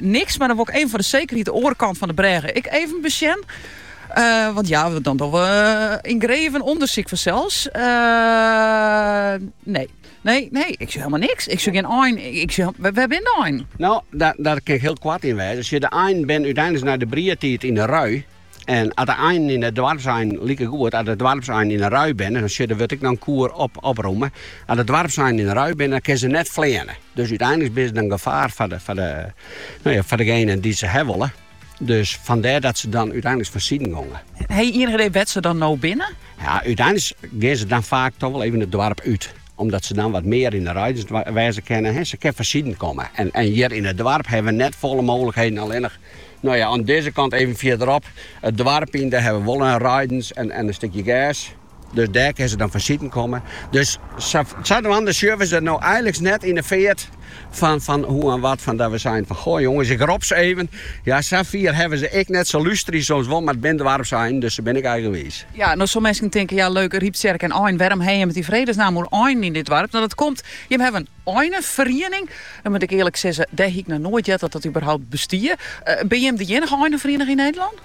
Niks, mar dan wol ik even foar de sekerheid de oare kant fan de brêge ek even besjen. want ja, dan dogge we in greven ûndersyk fansels. nee. Nee, nee, ik sjoch helemaal niks. Ik sjoch gjin ein. Ik sjoch, wêr, wêr binne de einen? No, dêr, dêr kin ik hiel koart yn wêze. As je, de einen binne úteinlik nei de briedtiid yn de rui. En as de einen, en de doarpseinen likegoed, as de doarpseinen yn 'e rui binne, dan sjoch, dêr wurdt ek noch in koer opromme. As de doarpseinen yn 'e rui binne, dan kinne se net fleane. Dus úteinlik binne se in gefaar foar degenen dy't se ha wolle. Dus fandêr dat se dan úteinlik fansiden gongen. Ha je ienich idee wêr't se dan no binne? Ja, úteinlik gean se dan faak toch wol even it doarp út. Omdat se dan wat mear yn 'e reidens wêze kinne. Se kin fansiden komme. En hjir yn it doarp hawwe we net folle mooglikheden. Allinnich no ja, oan dizze kant even fierderop it doarp yn, dêr hawwe we wol in reidens en in stikje gers. Dus dêr kin se dan fansiden komme. Dus sadwaande sjogge we se no eiliks net yn 'e feart. Fan, fan hoe en wat, fan dat we seinen fan, goh jonges, ik rop se even. Ja, sa fier hawwe we se ek net, se lústerje soms wol, mar it binne doarpseinen, dus se binne ek eigenwiis. Ja, no soe minsken tinke, ja leuk, Ryptsjerk en einen, wêrom ha jimme it yn vredesnaam oer einen yn dit doarp? No, dat komt, jimme hawwe in eineferiening. No moat ik earlik sizze, dêr hie ik noch noait heard dat dat überhaupt bestie. Binne jimme de iennige eineferiening yn Nederlân?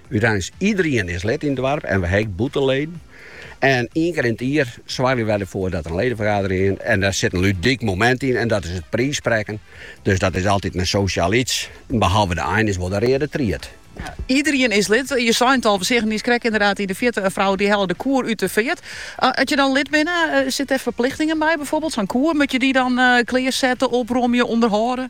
Uteins iederien is lid yn it doarp en we ha ek bûtenleden. En ien kear yn it jier soargje wy derfoar dat der in ledefergadering is. En dêr sit in ludyk momint yn en dat is it priissprekken. Dus dat is altyd in sosjaal iets. Behalve de ein is wol de reade tried. Iederien is lid. Je sei it al, we seagen niiskrekt ynderdaad yn de fjirte in frou dy helle de koer út de feart. As je dan lid binne, sitte der ferplichtingen by byfoarbyld? Sa'n koer, moat je dy dan klearsette, opromje, ûnderhâlde?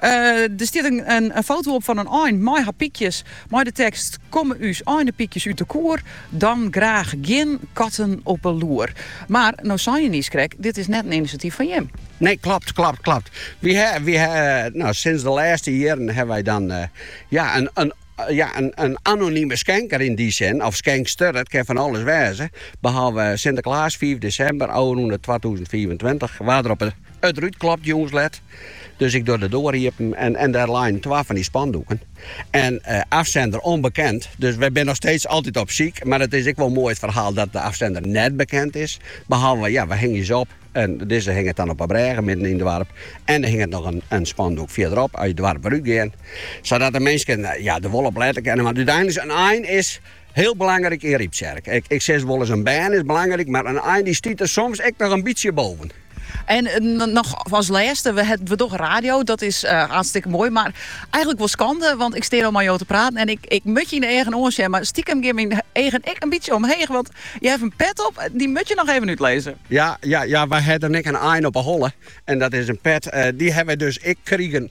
Der stiet in foto op fan in ein mei har pykjes mei de tekst, Komme ús einepykjes út de koer, dan graach gjin katten op 'e loer. Mar no sei je niiskrekt, dit is net in inisjatyf fan jim. Nee, klopt, klopt, klopt. Wy ha, wy ha, no sinds de lêste jierren hawwe wy dan ja in, ja in anonime skenker yn dy sin, of skenkster, it kin fan alles wêze, behalve Sinteklaas fiif desimber, ôfrûne twatûzen fiifentweintich, waard der op It rút klopt jûns let, dus ik doch de doar iepen en dêr leinen twa fan dy spandoeken. En afsender ûnbekend, dus wy binne noch steeds altyd op syk. Mar it is ek wol moai it ferhaal dat de afsender net bekend is. Behalve ja, we hingje se op en dizze hinget dan op 'e brêge midden yn it doarp. En der hinget noch in spandoek fierderop, at je it doarp wer útgean. Sadat de minsken ja, der wol op lette kinne. Want úteinliks in ein is. Hiel belangryk yn Ryptsjerk. Ik sis wolris in bern is belangryk, mar in ein dy stiet der soms ek noch in bytsje boven. En noch as lêste, we hebben toch radio, dat is hartstikke mooi, maar eigenlijk wel schande, want ik steer al met jou te praten en ik, ik mut je in de eigen oor zeggen, maar stiekem geef mijn eigen ik een beetje omheen, want je hebt een pet op, die moet je nog even uitlezen. Ja, ja, ja, wij hebben ik een eind op een holle en dat is een pet, die hebben we dus ik kriegen.